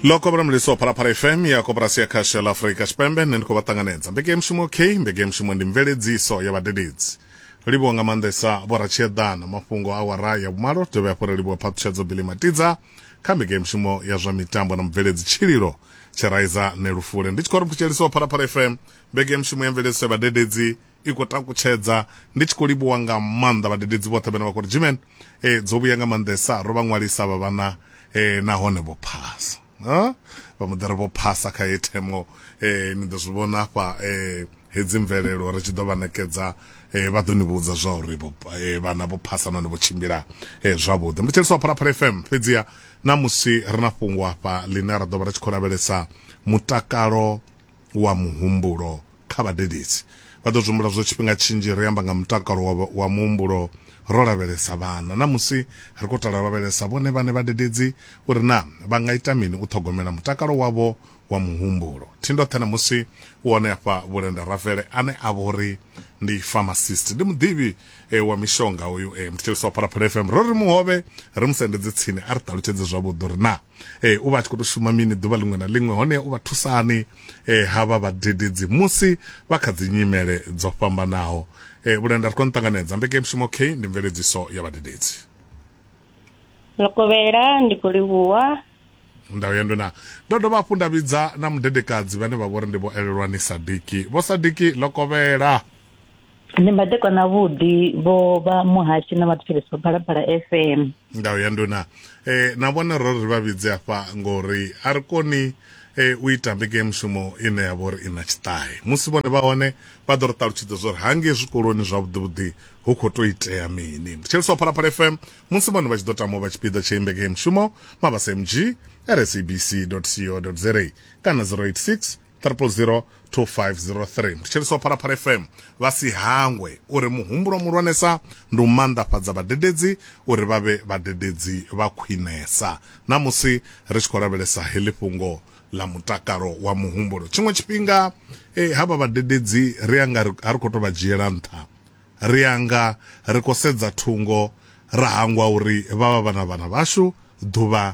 lo kobra mliso phalaphala fm ya koporasi ya khasho la afurika tshipembe nṋe ndi khou vha ṱanganedza mbekemushumo k mbekemushumo ndi mveledziso ya vhadededzi ri livhuwa nga maanḓesa vhoratshieḓana mafhungo a wara ya vhumalo dovhe hafhu ri livhuwa phaṱhutshedzo bili matidza kha mbekemushumo ya zwa mitambo na mubveledzi tshililo tshiraiza nelufule ndi tshi khou ri mphutshelisiwa phalaphala fm mbekemushumo ya mveledziso ya vhadededzi i khou takutshedza ndi tshi khou livhuwa nga maanḓa vhadededzi vhoṱhe vhane vha khou ri jimen e eh, dzo vhuya nga maanḓesa ro vha ṅwalisa vha vhana e eh, nahone vho phasa vha muḓari vho phasa kha ye themo e eh, ni ḓo zwi vhona afha e hedzi mvelelo ri tshi ḓo vha ṋekedza um vha ḓo ni vhudza zwa uri eh, vhana vho phasa nahone vho tshimbila eh, zwavhuḓi ndi tsheliswa phalaphala fm fhedziha na musi ri na fhungo afha ḽine ra ḓo vha ri tshi khou lavhelesa mutakalo wa muhumbulo kha vhadededzi. Vha ḓo zwi humbula zwo tshifhinga tshinzhi ri amba nga mutakalo wa, wa muhumbulo ro lavhelesa vhana. Na musi ri khou tala lavhelesa vhone vhane vhadededzi uri na vha nga ita mini u ṱhogomela mutakalo wavho wa muhumbulo. Thindoṱhe na musi u hone afha Vhulenda Rafele ane a vho ri ndi pharmacist. Ndi muḓivhi e, wa mishonga uyu e, muthetshelesi wa Phalaphala FM. Ro ri muhovhe ri mu sendedze tsini a ri ṱalutshedze zwavhuḓi uri na e, u vha a tshi khou tou shuma mini ḓuvha ḽiṅwe na ḽiṅwe hone u vha thusani e, ha vha vhadededzi musi vha kha dzi nyimele dzo fhambanaho e, vhulenda ri khou nṱanganedza mbekemushumo k ndi mveledziso ya vhadededzi lokovhela ndi khou livhuwa ndau ya ndwena ndo dovha hafhu nda vhidza na mudedekadzi vhane vha vhori ndi vho elelwani sadiki vho sadiki lokovhela ndi mbadekwa na vhudi vho vha muhashi na vhathetshelesi vha phalaphala fm ndau ya nduna e, na vhona ro ri vha vhidze afha ngori a ri koni e, u ita mbekanyamushumo ine ya vha uri i na tshiṱahe musi vhone vha hone vha ḓo ri ṱalutshedza zwa uri hangei zwikoloni zwavhuḓivhuḓi hu khou tou itea mini thetshelesi wa phalaphala fm musi vhone vha tshi ḓo tama u vha tshipiḓa tsha imbekanyamushumo mabasa mg rsabc co za kana 086 triple zero 2503 ndi tsheliswa phalaphala fm vha si hangwe uri muhumbulo muhulwanesa ndi u maanḓafhadza vhadededzi uri vha vhe vhadededzi vha khwinesa na musi ri tshi khou lavhelesa heḽi fhungo ḽa mutakalo wa muhumbulo tshiṅwe tshifhinga eh, havha vhadededzi ri anga ri- a ri khou tou vha dzhiela nṱha ri anga ri khou sedza thungo ra hangwa uri vha vha vhana vhana vhashu ḓuvha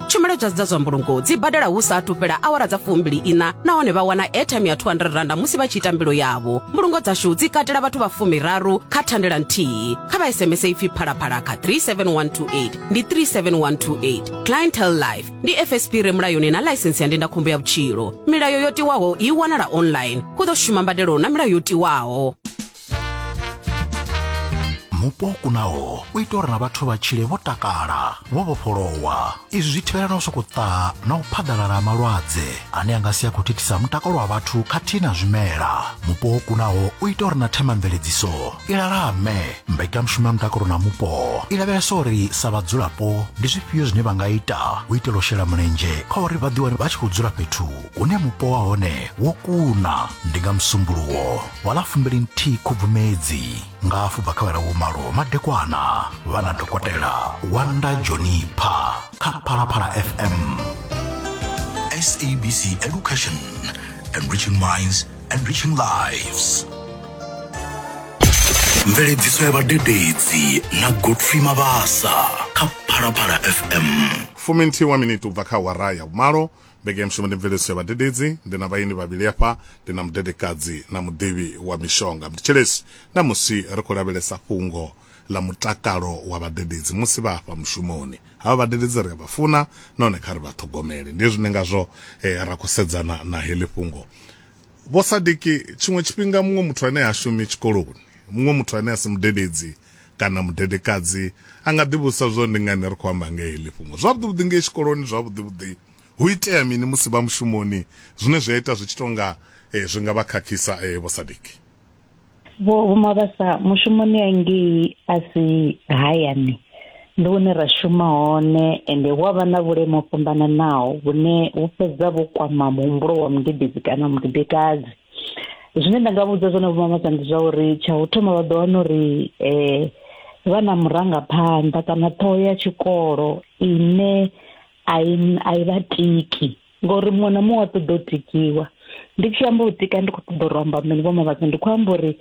tshumelo dza dza zwa mbulungo dzi badela hu sa athu fhela awara dza fumbili ina nahone vha wana airtime ya 200 randa musi vha tshi ita mbilo yavho mbulungo dzashu dzi katela vhathu vha fumiraru kha thandela nthihi kha vha sms ipfi phalaphala kha 37128 ndi 37128 clientel life ndi fsp re mulayoni na ḽaisensi ya ndindakhombo ya vhutshilo milayo yo tiwaho i wanala online hu ḓo shuma mbadelo na milayo yo tiwaho mupo o kunaho u ita uri na vhathu vha tshile vho takala vho vhofholowa izwi zwi thivhela na u sokou ṱaha na u phaḓalala ha malwadze ane a nga si a khou thithisa mutakalo wa vhathu khathihi na zwimela mupo o kunaho u ita uri na themamveledziso i lalame mbekanyamushumo ya mutakalo na mupo i lavhelesa uri sa vhadzulapo ndi zwifhio zwine vha nga ita u itela u shela mulenzhe kha uri vha ḓiwane vha tshi khou dzula fhethu hune mupo wa hone wo kuna ndi nga musumbuluwo wa ḽa fumbilinthihi khubvumedzi nga afho bva kha vhalawo malo madekwana vha na dokotela wanda jonipha kha phalaphala fm sabc education enriching minds enriching lives mveledziso ya vhadededzi na godfrey mabasa kha phalaphala fm fuminthiwa miniti u bva kha wara ya vhumalo Vhege ya mushumo ndi mveledziso ya vhadededzi. Ndi na vhaeni vhavhili afha, ndi na mudedekadzi na muḓivhi wa mishonga. Mthetshelesi, Ṋamusi ri khou lavhelesa fhungo ḽa mutakalo wa vhadededzi musi vha afha mushumoni. Havha vhadededzi ri a vha funa nahone kha ri vha ṱhogomele. Ndi hezwi ndi ngazwo ra khou sedzana na heḽi fhungo. Vho Sadiki, Tshiṅwe tshifhinga muṅwe muthu ane ha shumi tshikoloni, muṅwe muthu ane a si mudededzi Kana mudedekadzi a nga ḓivhudzisa zwo ndi ngani ri khou amba nga heḽi fhungo. Zwavhuḓi-vhuḓi ngei tshikoloni, zwavhuḓi-vhuḓi hu itea mini musi vha mushumoni zwine zwi a ita zwi tshi tou nga zwi nga vha khakhisa Vho Sadiki? Vho Vho Mabasa, mushumoni ya ngei a si hayani, ndi hune ra shuma hone ende hu a vha na vhuleme ho fhambananaho vhune vhu fhedza vhu kwama muhumbulo wa mudededzi kana mudedekadzi. zwine nda nga vhudza zwone vhumamasa ndi zwa uri tsha u thoma vha ḓo wana uri um vha na murangaphanḓa kana ṱhoho ya tshikolo ine a i a i vha tiki ngori muṅwe na muṅwe a ṱoḓa u tikiwa ndi tshi amba u tika ndi khou ṱoḓa uri amba mini vho mavhatsa ndi khou amba uri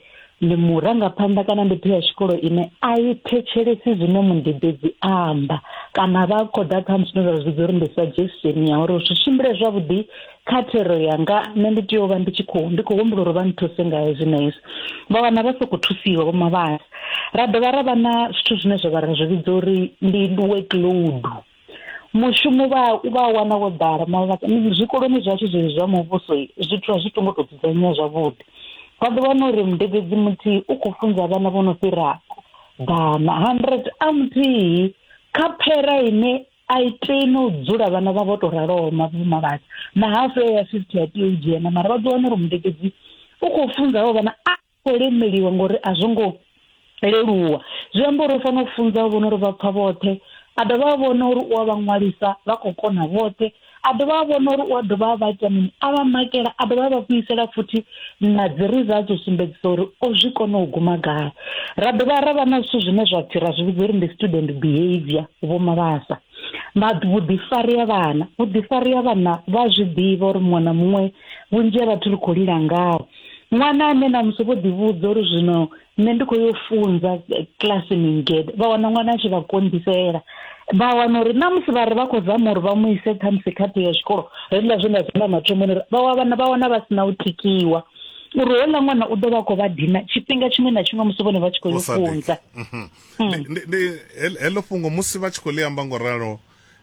ndi murangaphanḓa kana ndi pheya tshikolo ine a i thetshelesi zwine mundidedzi amba kana vha khou ḓa kha musi zwine zwa zwi vhidza uri ndi suggestion ya uri zwi tshimbile zwavhuḓi kha thero yanga nṋe ndi tea u vha ndi tshi khou ndi khou humbula uri vha nthuse nga hezwi na hezwi vha wana vha sokou thusiwa vho mavhala ra dovha ra vha na zwithu zwine zwa vha ra zwi vhidza uri ndi workload mushumo vha u vha wana wo ḓala mara zwikoloni zwashu zwezwi zwa muvhuso zwithu a zwi to ngo to dzudzanyea zwavhuḓi vha ḓo wana uri mudededzi muthihi u khou funza vhana vho no fhira ḓana hundred a muthihi kha phera ine a i tei no u dzula vhana vha vho to raloho mavhumavhatsi na hafu ya fifty a tea u dzhena mara vha ḓo wana uri mudededzi u khou funza havho vhana a khou lemeliwa ngori a zwo ngo leluwa zwi amba uri u fanela u funza u vhona uri vha pfha vhoṱhe a dovha a vhona uri u a vha ṅwalisa vha khou kona vhoṱhe a dovha a vhona uri u a dovha a vha ita mini a vha makela a dovha a vha vhuisela futhi na dzi results u sumbedzisa uri o zwi kona u guma gai ra dovha ra vha na zwithu zwine zwa pfhi ra zwi vhidza uri ndi student behavior vho mavhasa vhuḓifari ha vhana vhuḓifari ha vhana vha zwi ḓivha uri muṅwe na muṅwe vhunzhi ha vhathu ri khou lila ngaho ṅwana ane na musi vho ḓivhudza uri zwino nṋe ndi khou yo funza kilasini ngede vha wana ṅwana a tshi vha konḓisela vha wana uri na musi vha ri vha khou zama uri vha mu ise khamusi khaṱho ya tshikolo hezwiḽa zwe nda zwi amba mathomoni uri vha wana vha wana vha si na u tikiwa uri houḽa ṅwana u ḓo vha khou vha dina tshifhinga tshiṅwe na tshiṅwe musi vhone vha tshi khou yo funza mhm. mm. heḽo fhungo musi vha tshi khou ḽi amba ngo ralo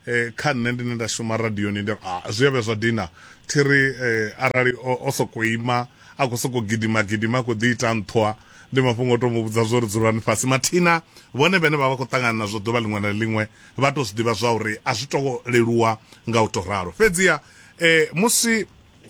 eh, kha nṋe ndine nda shuma radioni ndi ah, zwi a vhe zwa dina thi ri eh, arali o sokou ima a khou sokou gidima gidima a khou ḓi ita nṱhwa ndi mafhungo o tou mu vhudza zwo ri dzulani fhasi mathina vhone vhene vha vha khou ṱangana nazwo ḓuvha ḽiṅwe na ḽiṅwe vha tou zwi ḓivha zwa uri a zwi tou leluwa nga u tou ralo fhedziha um musi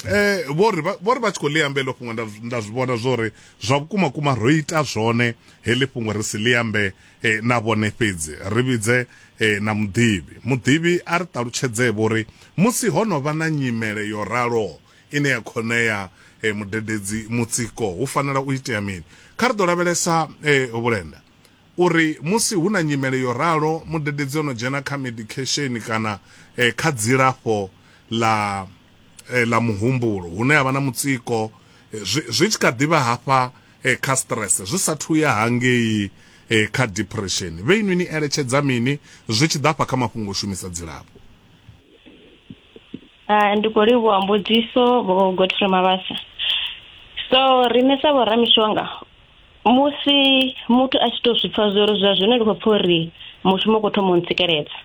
eh vho ri vho ri vha tshi khou ḽi ambe ḽo fhungo nda zwi vhona zwo ri zwa vhukuma kuma ro ita zwone heḽi fhungo ri si ḽi ambe eh, na vhone fhedzi ri vhidze eh, na muḓivhi muḓivhi a ri ṱalutshedzee vho ri musi ho no vha na nyimele yo raloho ine ya khonea eh, mudededzi mutsiko hu fanela u itea mini kha ri ḓo lavhelesa eh, vhulenda U ri, Musi hu na nyimele yo ralo, mudededzi o no dzhena kha medikhesheni kana kha dzilafho ḽa ḽa muhumbulo hune a vha na mutsiko zwi zwi tshi kha ḓi vha hafha kha stress zwi sa thu ya hangei kha depression, vhe inwi ni eletshedza mini zwi tshi ḓa hafha kha mafhungo o shumisa dzilafho? Ndi khou livhuwa mbudziso Vho Godfrey Mabasa. So riṋe sa vho ramishonga, musi muthu a tshi to zwi pfa zwo ri zwa zwino ndi khou pfa uri mushumo u khou thoma u ntsikeledza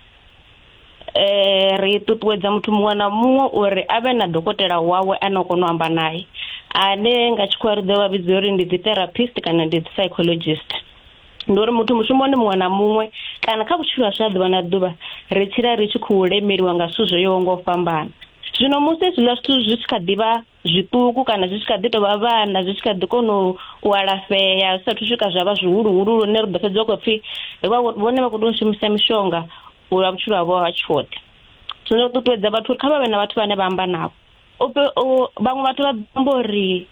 eh ri ṱuṱuwedza muthu muṅwe na muṅwe uri a vhe na dokotela wawe ane o kona u amba naye ane nga tshikhuwa ri ḓo vha vhidza uri ndi dzi therapist kana ndi dzi psychologist ndi uri muthu mushumoni muṅwe na muṅwe kana kha vhutshilo hashu ha ḓuvha na ḓuvha ri tshila ri tshi khou lemeliwa nga zwithu zwo yaho nga u fhambana zwino musi hezwiḽa zwithu zwi tshi kha ḓivha zwiṱuku kana zwi tshi kha ḓi tovha vhana zwi tshi kha ḓi kona u alafhea zwi sathu swika zwa vha zwihuluhulu lune ri ḓo fhedza u khou pfhi vhone vha khou tea u shumisa mishonga u lwa vhutshilo havho ha tshoṱhe zwino ri ṱuṱuwedza vhathu uri kha vha vhe na vhathu vhane vha amba navho vhaṅwe vhathu vha amba uri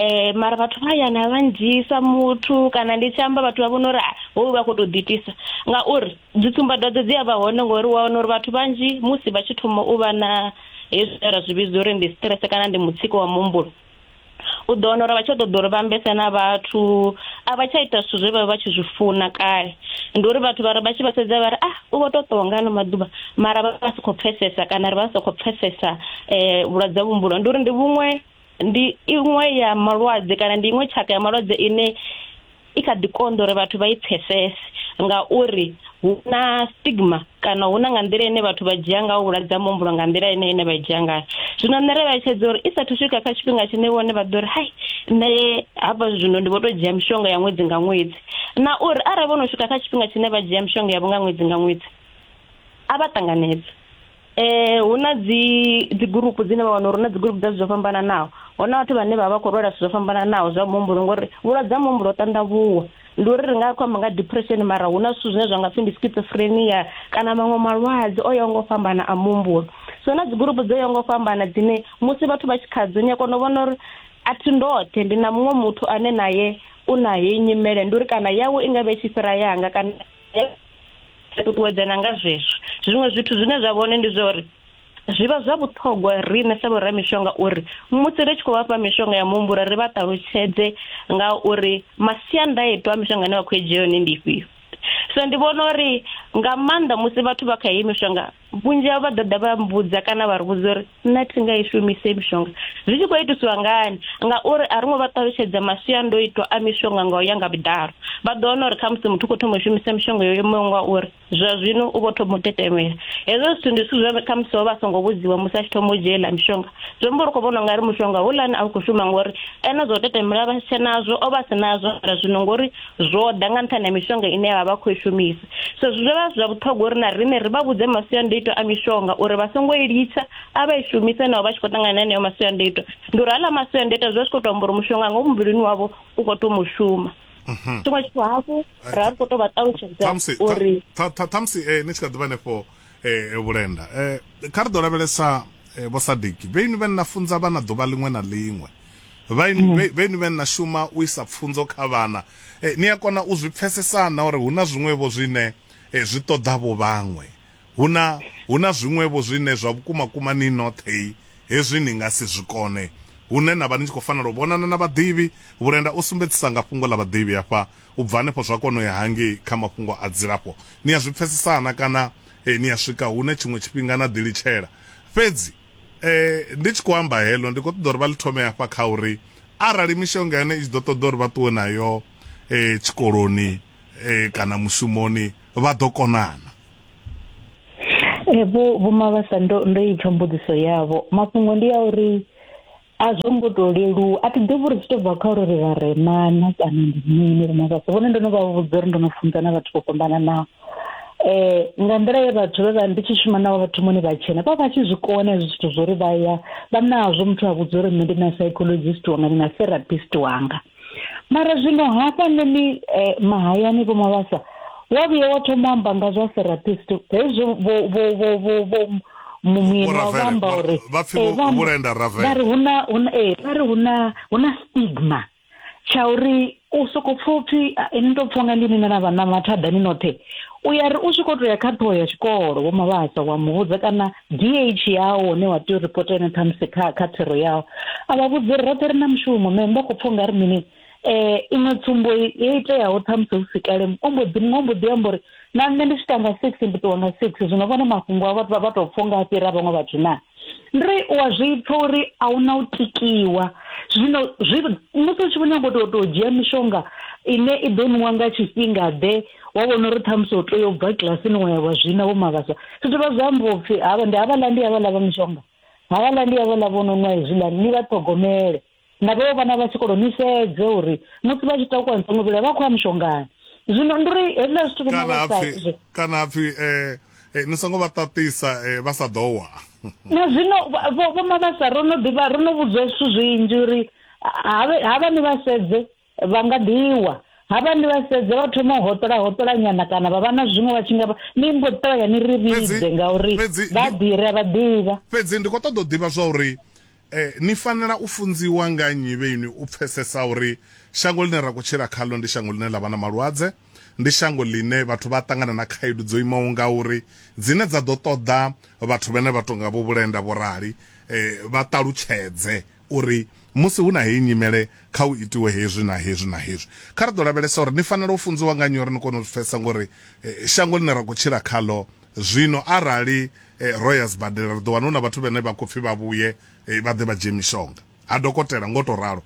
um mara vhathu vha ya na vha ndzhisa muthu kana ndi tshi amba vhathu vha vhona uri ah, hoyu vha khou tou ḓiitisa ngauri dzi tsumbadwadze dzi a vha hone ngori wa wana uri vhathu vhanzhi musi vha tshi thoma u vha na hezwi ra zwi vhidza uri ndi stress kana ndi mutsiko wa muhumbulo u ḓo wana uri vha tsha ṱoḓa uri vha ambese na vhathu a vha tsha ita zwithu zwe vha vha tshi zwi funa kale ndi uri vhathu vhare vha tshi vha sedza vha ri ah u vho to ṱowa nga ano maḓuvha mara vha vha si khou pfesesa kana ri vha sa khou pfesesa um vhulwadze ha muhumbulo ndi uri ndi vhuṅwe ndi iṅwe ya malwadze kana ndi iṅwe tshaka ya malwadze ine i kha ḓi konḓa uri vhathu vha i pfesese ngauri hu na stigma kana hu na nga nḓila ine vhathu vha dzhia nga vhulwadze ha muhumbulo nga nḓila ine ine vha dzhia ngayo zwino nṋe ri vhaetshedza uri i sathu swika kha tshifhinga tshine vhone vha ḓo ri hai nṋe hafha zwino ndi vho to dzhia mishonga ya ṅwedzi nga ṅwedzi na uri arali vho no swika kha tshifhinga tshine vha dzhia mishonga yavho nga ṅwedzi nga ṅwedzi a vha ṱanganedza Eh hu na dzi dzi gurupu dzine vha wana uri na dzi gurupu dza zwo fhambananaho. Hona vhathu vhane vha vha khou lwala zwo fhambananaho zwa muhumbulo ngori vhulwadze ha muhumbulo ho ṱanḓavhuwa. Ndi uri ri nga khou amba nga depression mara hu na zwithu zwine zwa nga pfhi ndi schizophrenia kana maṅwe malwadze o yaho nga u fhambana a muhumbulo. So na dzi gurupu dzo yaho nga u fhambana dzine musi vhathu vha tshi khadzo ni a kona u vhona uri a thi ndoṱhe ndi na muṅwe muthu ane naye u na heyi nyimele ndi uri kana yawe i nga vha i tshi fhira yanga kana ri ṱuṱuwedzana nga zwezwo zwiṅwe zwithu zwine zwa vhone ndi zwa uri zwi vha zwa vhuṱhogwa riṋe sa vhoramishonga uri musi ri tshi khou vhafha mishonga ya muhumbulo ri vha ṱalutshedze nga uri masiandaitwa a mishonga ine vha khou i dzhia yone ndi ifhio so ndi vhona uri nga maanḓa musi vhathu vha kha heyi mishonga Vhunzhi havho vha ḓo ḓa vha mbudza kana vha ri vhudza uri nṋe thi nga i shumise mishonga zwi tshi khou itiswa ngani ngauri a ri ngo vha ṱalutshedza masiandoitwa a mishonga nga u ya nga vhuḓalo vha ḓo wana uri kha musi muthu u khou thoma u shumisa mishonga yo imaho nga uri zwa zwino u vho thoma u tetemela hezwo zwithu ndi zwithu zwe kha musi vha vha songo vhudziwa musi a tshi thoma u dzhia iḽa mishonga zwi amba uri u khou vhona ungari mushonga houḽani a u khou shuma ngori ene zwa u tetemela vha si tshe nazwo o vha si nazwo mara zwino ngori zwo ḓa nga nṱhani ha mishonga ine vha vha khou i shumisa so zwi dovha zwa vhuṱhogwa uri na riṋe ri vha vhudze masiandoitwa a mishonga uri vha songo i litsha a vha i shumise naho vha tshi khou ṱangana na heneyo masiandoitwa ndi uri haḽa masiandoitwa zwi vha zwi khou tou amba uri mushonga nga muvhilini wavho u khou tou mu shuma mhm. tshiṅwe tshithu hafhu ra ri khou tou vha ṱalutshedza uri ṱhamusi eh, ni tshi kha ḓivha hanefho eh, vhulenda eh, kha ri ḓo lavhelesa vho sadiki vheini vhe nna funza vha na ḓuvha ḽiṅwe na ḽiṅwe vhaini mm. vhaini vhane na shuma u isa pfunzo kha vhana eh, ni a kona u zwi pfesesana uri huna zwiṅwevho zwine eh, zwi ṱoḓa vho vhaṅwe huna huna zwiṅwevho zwine zwa vhukuma kuma ni nothei hezwi ni nga si zwi kone hune na vha ni tshi khou fanela u vhonana na vhaḓivhi vhulenda u sumbedzisa nga fhungo ḽa vhaḓivhi hafha u bva hanefho zwa kona u ya hangei kha mafhungo a dzilafho ni a zwi pfesesana kana eh, ni a swika hune tshiṅwe tshifhinga na ḓilitshela fhedzi eh ndi tshi khou amba heḽo ndi khou ṱoḓa uri vha ḽi thome hafha kha uri arali mishonga yane i tshi ḓo ṱoḓa uri vha ṱuwe nayo eh tshikoloni eh kana mushumoni vha ḓo konana eh vho vho mavhasa ndo ndo ipfa mbudziso yavho mafhungo ndi ya uri a zwo ngo to leluwa a thi ḓivhi uri zwi to bva kha uri ri vharema na kana ndi mini ri mavhasa vhone ndo no vha vhudza uri ndo no funza na vhathu vho fhambananaho um nga nḓila ye vhathu vhe vha ndi tshi shuma navho vhathu moni vha tshena vha vha tshi zwi kona hezwi zwithu zwo ri vha ya vha nazwo muthu a vhudza uri nṋe ndi na psychologist wanga ndi na therapist wanga mara zwino hafhanoni eh, mahayani vho mavhasa wa vhuya wa thoma u amba nga zwa therapist hezwo vho- vho- vho- vho- vho- mu- mueni Vho wa Ravele, vhamba vho- uri vha pfi eh, vho- vha- vhulenda Ravele. vha ri hu na- hu na- eh, vha ri hu na- hu na stigma tsha uri u soko pfa upfi "Ah, ni to pfa nga ndi ni na vhana mathadani noṱhe u ya ri u tshi kho to ya kha ṱhoho ya tshikolo vho mavhasa wa muvhudza kana DH yao hune wa tea u ripota yone ṱhamusi kha kha thero yao a vha vhudzi uri roṱhe ri na mushumo me vha khou pfha u nga ri mini um iṅwe tsumbo yo iteaho ṱhamusi hu si kale ombo ḓi muṅwe ombo ḓi amba uri na nṋe ndi tshi tanga six ndi ṱuwa nga six zwino vhone mafhungo a vhathu vha tou pfha unga a fhira vhaṅwe vhathu na ndi ri u a zwi pfha uri a hu na u tikiwa zwino zwi musi u tshi vho nyago u tou tou dzhia mishonga ine i ḓo nwiwa nga tshifhinga ḓe wa vhona uri ṱhamusi u tea u bva kilasini wa ya wa zwina vho mavhasa zwi dovha zwa amba upfhi havha ndi havhaḽa ndi havhaḽa vha mishonga havhaḽa ndi havhaḽa vho no nwa hezwiḽani ni vha ṱhogomele na vheo vhana vha tshikolo ni sedze uri musi vha tshi takuwa nṱhongo vhila vha khou ya mishongani zwino ndi uri hezwiḽa zwithu vho mavhasa kana hapfhi um Eh, ni songo vha ṱaṱisa eh, vha sa ḓo wa na zwino vho mavhasa ro no ḓivha ro no vhudzwa zwithu zwinzhi uri havha ni vha sedze Vha nga ḓi wa. Havha ndi vhasedze vha thoma u hoṱola hoṱola nyana kana vha vha na zwiṅwe vha tshi nga ni mbo ḓi ṱavhanya ni ri vhidze ngauri vha ḓi ri a vha ḓivha. Fhedzi ndi khou ṱoḓa u ḓivha zwa uri eh, ni fanela u funziwa nga nnyi vhe inwi u pfesesa uri shango ḽine ra khou tshila khaḽo ndi shango ḽine ḽa vha na malwadze, ndi shango ḽine vhathu vha ṱangana na khaedu dzo imaho nga uri dzine dza ḓo ṱoḓa vhathu vhene vha tonga vho Vhulenda vho rali eh, vha ṱalutshedze Uri musi hu na heyi nyimele, kha hu itiwe hezwi na hezwi na hezwi. Kha ri ḓo lavhelesa uri ni fanela u funziwa nga nnyi uri ni kone u zwi pfesesa nga uri shango ḽine ra khou tshila khaḽo zwino arali ro ya zwibadela ri ḓo wana hu na vhathu vhane vha khou pfi vha vhuye vha ḓe vha dzhie mishonga ha dokotela ngo tou ralo.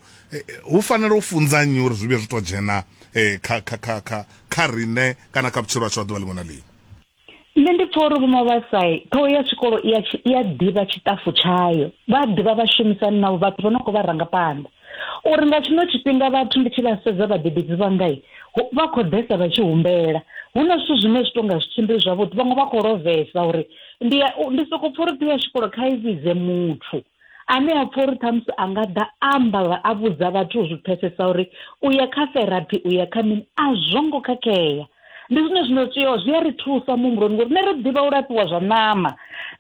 Hu fanela u funza nnyi uri zwi vhuye zwi tou dzhena kha, kha, kha, kha, kha riṋe kana kha vhutshilo hashu ha ḓuvha ḽiṅwe na ḽiṅwe? nṋe ndi pfa uri vho mavhasai ṱhoho ya tshikolo i a ḓivha tshiṱafu tshayo vha ḓivha vhashumisani navho vhathu vho no khou vha ranga phanḓa uri nga tshino tshifhinga vhathu ndi tshi vha sedza vhadededzi vhangai vha khou ḓesa vha tshi humbela hu na zwithu zwine zwi tonga zwi tshimbili zwavhuḓi vhaṅwe vha khou lovhesa uri ndi ndi soko pfha uri ṱhoho ya tshikolo kha i vhidze muthu ane a pfa uri ṱhamusi a nga ḓa amba a vhudza vhathu zwi pfesesa uri u ya kha therapy u ya kha mini a zwo ngo khakhea ndi zwine zwino tea zwi a ri thusa muhumbuloni ngori nṋe ri ḓivha u lafhiwa zwa ṋama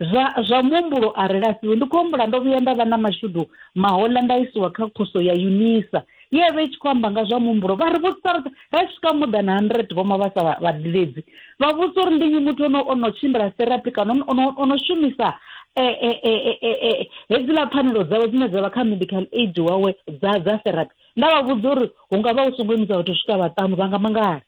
zwa zwa muhumbulo a ri lafhiwe ndi khou humbula ndo vhuya nda vha na mashudu mahoḽa nda isiwa kha khoso ya unisa ye vha i tshi khou amba nga zwa muhumbulo vha ri vhudzisa roṱhe ra swika more than 100 vho mavhasa vhadiledzi vha vhudzisa uri ndi nnyi muthu ono ono tshimbila therapy kana ono ono shumisa eh, eh, eh, eh, eh, hedziḽa pfanelo dzawe dzine dza vha kha medical aid wawe dza dza therapy nda vha vhudza uri hu nga vha hu songo imisa vhathu swika vhaṱanu vha nga mangala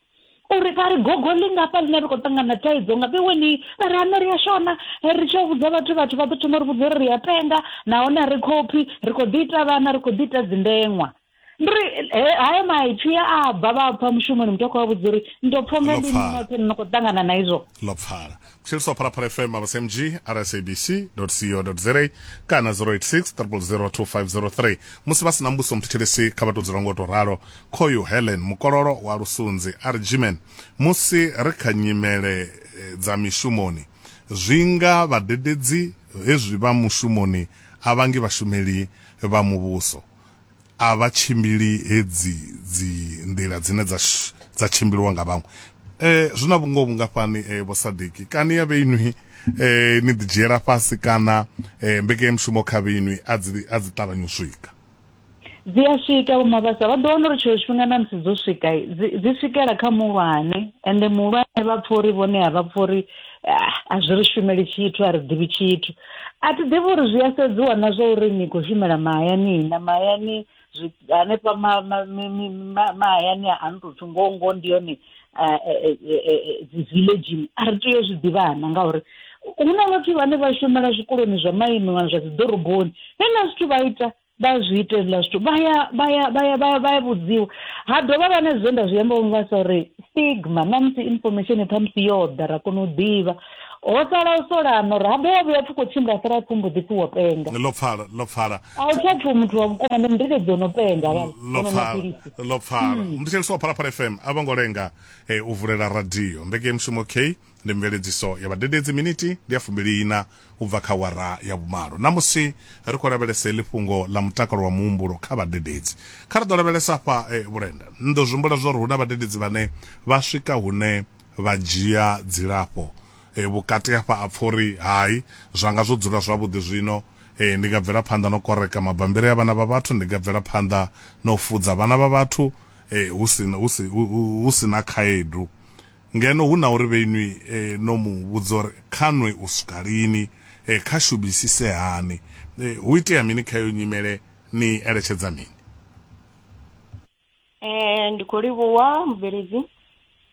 uri vha ri gogo ḽi ngafha ḽine ri khou ṱangana thaidzo nga vhe weni vha ri ane ri a shona ri tshi vhudza vhathu vhathu vha ḓo thoma uri vhudza uri ri a penga nahone a ri khophi ri khou ḓi ita vhana ri khou ḓi ita dzindeṅwa ndi ri hayo maipfi ya a bva vha pfa mushumoni muthu a khou vha vhudza uri ndo pfha nga ndi noṱhe no khou ṱangana na izwo ḽo pfala tshiri swa phalaphala fm abasmg rsabc co za kana 086 0002503 musi vha si na mbuso muthetshelesi kha vha tou dzula ngo tou ralo khoyu helen mukololo wa lusunzi argiman musi ri kha nyimele eh, dza mishumoni zwi nga vhadededzi hezwi vha mushumoni a vhangi vhashumeli vha muvhuso a vha tshimbili hedzi dzi nḓila dzine dza dza tshimbiliwa nga vhaṅwe eh zwi na vhungoho vhungafhani eh vho sadiki kani ya vheinwi eh ni ḓi dzhiela fhasi kana eh mbekanyamushumo kha vheinwi a dzi a dzi ṱavhanya u swika dzi a swika vho mabasa vha ḓo wana uri tshiṅwe tshifhinga na musi dzo swika dzi swikela kha muhulwane ende muhulwane vha pfha uri vhone a vha pfha uri ah, a zwi ri shumeli tshithu a ri ḓivhi tshithu a thi ḓivhi uri zwi a sedziwa na zwa uri ni khou shumela mahayani na mahayani hanefha mahayani a no tou pfhi ngoho ngoho ndi yone eh, eh, eh, dzi villagini a ri tea u zwi ḓivhana ngauri hu na vhathu vhane vha shumela zwikoloni zwa maimiwa zwa dzi ḓoroboni vhe na zwithu vha ita vha zwi ita hezwiḽa zwithu vha ya vha ya vha ya vha vha ya vhudziwa ha dovha vha na zwe nda zwi amba nga sa uri stigma na musi information kha musi yo ḓa ra kona u ḓivha ho sala u solano ra ha dovha vhuya pfhi khou tshimbila sala pfhi mbo ḓi pfhi wo penga ḽo pfala ḽo pfala a u tsha pfhi muthu wa vhukuma ndi ndile dzo no penga vha ḽo pfala ḽo pfala muthetshelesi wa phalaphala fm a vho ngo lenga eh, u vulela radio mbekemushumo k Ndi mveledziso ya Vhadededzi Miniti ndi ya fumbili-iṋa u bva kha awara ya vhumalo. Ṋamusi ri khou lavhelesa heḽi fhungo ḽa mutakalo wa muhumbulo kha vhadededzi. Kha ri ḓo lavhelesa afha vhulenda. Ni ḓo zwi humbula zwa uri hu na vhadededzi vhane vha swika hune vha dzhia dzilafho vhukati hafha a pfa uri, Hai, zwa nga zwo dzula zwavhuḓi zwino. Ndi nga bvela phanḓa na u koreka mabambiri a vhana vha vhathu. Ndi nga bvela phanḓa na u fudza vhana vha vhathu hu si na khaedu. Ngeno hu na uri vhe inwi no mu vhudza uri kha nwe u swika lini, kha shumisise hani, hu itea mini kha iyo nyimele, ni eletshedza mini? Ee, ndi khou livhuwa mubveledzi.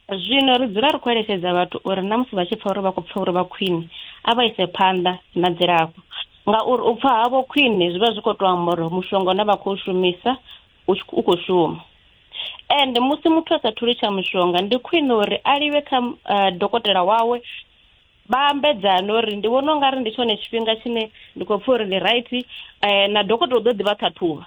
Zwino ri dzula ri khou eletshedza vhathu uri na musi vha tshi pfa uri vha khou pfa uri vha khwine, a vha ise phanḓa na dzilafho. Ngauri u pfa havho khwine zwi vha zwi khou tou amba uri mushonga une vha khou shumisa u tshi u khou shuma and musi muthu a sa thuli tsha mushonga ndi khwine uri a livhe kha uh, dokotela wawe vha ambedzane uri ndi vhona ungari ndi tshone tshifhinga tshine ndi khou pfha uri ndi right um na dokotela u ḓo ḓivha ṱhaṱhuvha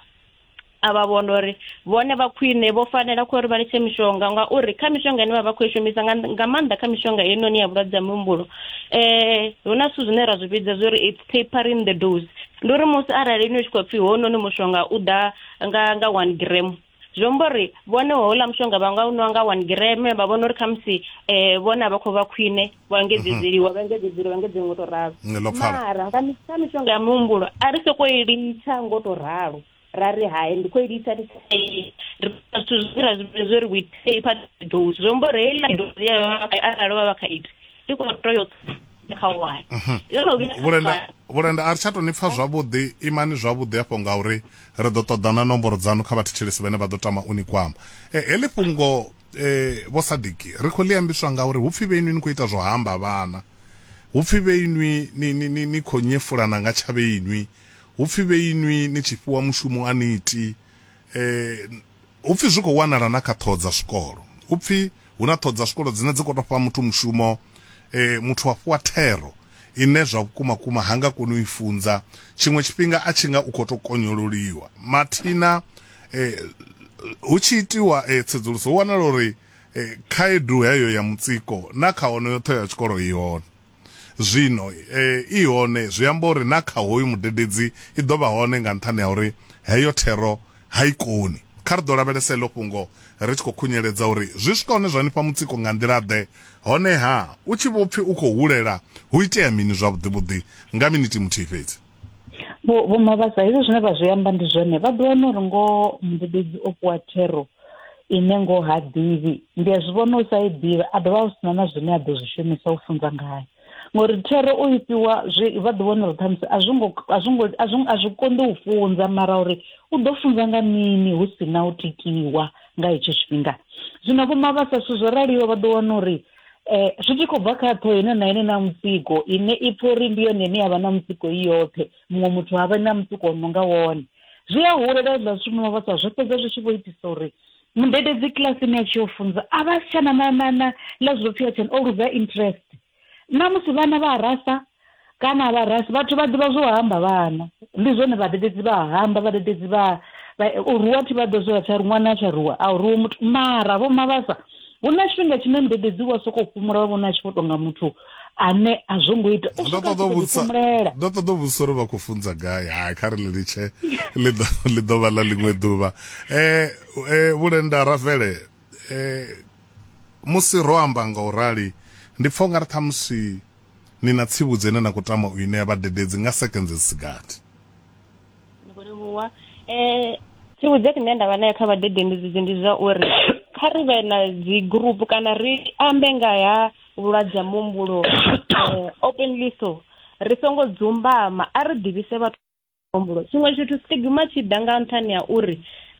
a vha vhona uri vhone vha khwine vho fanela khou uri vha litshe mishonga ngauri kha mishonga ine vha vha khou i shumisa nga maanḓa kha mishonga heinoni ya vhulwadze ha muhumbulo um hu na zwithu zwine ra zwi vhidza zwi uri papering the dose ndi uri musi arali ni tshi khou pfhi hounoni mushonga u ḓa nga nga one gram zwi amba uri vhone houḽa mushonga vha nga u nwa nga one gram vha vhona uri khamusi um vhone a vha khou vha khwine vha engedzedzeliwa vha engedzedzeliwa vha engedzedzeliwa ngo to ralo mara nga mishonga ya muhumbulo a ri sokou i litsha ngo to ralo ra ri hai ndi khou i lisa ri zwithu zwi ra zwi zwo ri witei pha dosi zwo mbo ri heiḽa dosi ya arali vha vha kha iti ndi khou to yo kha wani mhm. vhulenda vhulenda a ri tsha to ni pfa zwavhuḓi imani zwavhuḓi afho nga uri ri ḓo ṱoḓana nomboro dzanu kha vhathetshelesi vhane vha ḓo tama u ni kwama eh, heḽi fhungo eh, vho sadiki ri khou ḽi ambiswa nga uri hupfi vheinwi ni khou ita zwo hamba vhana hupfi vheinwi ni, ni, ni, ni khou nyefulana nga tshavheinwi Hu pfi vhe inwi ni tshi fhiwa mushumo a ni iti e, hu pfi zwi khou wanala na kha ṱhoho dza zwikolo. Hu pfi hu na ṱhoho dza zwikolo dzine dzi khou tou fha muthu mushumo e, muthu a fhiwa thero ine zwa vhukuma kuma ha nga koni u i funza, tshiṅwe tshifhinga a tshi nga u khou tou konyololiwa. Mathina e, hu tshi itiwa e, tsedzuluso hu wanala uri e, khaedu heyo ya mutsiko na kha onoyo ṱhoho ya tshikolo i hone. Zwino e, i hone, zwi amba uri na kha hoyu mudededzi i ḓo vha hone nga nṱhani ha uri heyo thero ha i koni. Kha ri ḓo lavhelesa heḽo fhungo ri tshi khou khunyeledza uri zwi swika hune zwa ni fha mutsiko nga nḓila-ḓe, hone-ha, u tshi vho pfi u khou hulela, hu itea mini zwavhuḓi-vhuḓi nga minithi muthihi fhedzi? vho vho mavhasa hezwi zwine vha zwi amba ndi zwone vha ḓo wana uri ngoho mudededzi o fhiwa thero ine ngoho ha ḓivhi ndi a zwi vhona u sa i ḓivha a dovha a sina na zwine a ḓo zwi shumisa u funza ngayo ngori thero u i fhiwa zwi vha ḓi vhona uri ṱhamusi a zwo ngo a zwo ngo a zwo a zwi konḓi u funza mara uri u ḓo funza nga mini hu si na u tikiwa nga hetsho tshifhinga zwino vho mavhasa zwithu zwo raliho vha ḓo wana uri Eh, zwi tshi khou bva kha ṱhoho ine na ine na mutsiko ine i pfha uri ndi yone ine yavha na mutsiko i yoṱhe muṅwe muthu ha vha na mutsiko wo no nga wone zwi a hulela zwiḽa zwithu muno vhasa zwo fhedza zwi tshi vho itisa uri mudededzi kilasini a tshi yo funza a vha si tshana na na na ḽa zwo pfhi atshani o luza interest na musi vhana vha rasa kana vha rasi vhathu vha ḓivha zwo hamba vhana ndi zwone vhadededzi vha hamba vhadededzi vha u ruwa thi vha ḓo zwi tsha ṅwana a tsha ruwa a u ruwe muthu mara vho mavhasa hu na tshifhinga tshine mudededzi wa soko fhumula wa vhona a tshi vho tonga muthu ane a zwo ngo ita u swika ṱoḓa vhutsa ndo ṱoḓa u vhudzisa uri vha khou funza gai hai kha ri ḽi litshe ḽi ḓo vha ḽa ḽiṅwe ḓuvha eh, eh vhulenda rafele eh musi ro amba nga u rali ndi pfha u nga ri ṱhamusi Ni na tsivhudzo ine na khou tama u i ṋea vhadededzi nga sekenze dzi si gathi. Ndi khou livhuwa. Eh, tsivhudzo ine nda vha nayo kha vhadededzi ndi zwa uri kha ri vhe na dzi group kana ri ambe nga ha vhulwadze ha muhumbulo eh, openly so ri songo dzumbama a ri ḓivhise vhathu humbulo tshiṅwe tshithu stigma tshi ḓa nga nṱhani ha uri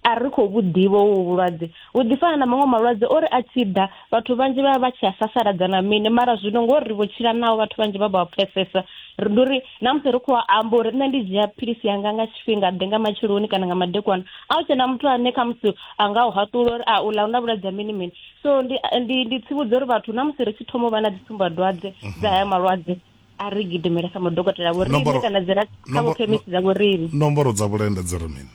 a ri khou vhu ḓivha uvhu vhulwadze vhu ḓi fana na maṅwe malwadze ori a tshi ḓa vhathu vhanzhi vha vha vha tshi a sasaladza na mini mara zwino ngori ri vho tshila naho vhathu vhanzhi vha vha pfesesa ri ndi uri na musi ri khou amba uri nṋe ndi dzhia philisi yanga nga tshifhinga ḓe nga matsheloni kana nga madekwana a u tshena muthu ane kha musi a nga u haṱula uri a u ḽa u na vhulwadze ha mini mini so ndi ndi ndi tsivhudza uri vhathu na musi ri tshi thoma u vha na dzi tsumbadwadze dza haya malwadze a ri gidimele kha madokotela vhoriṋe kana dzi ra kha vhokhemisi dza vhoriṋe nomboro dza vhulenda dzi ri mini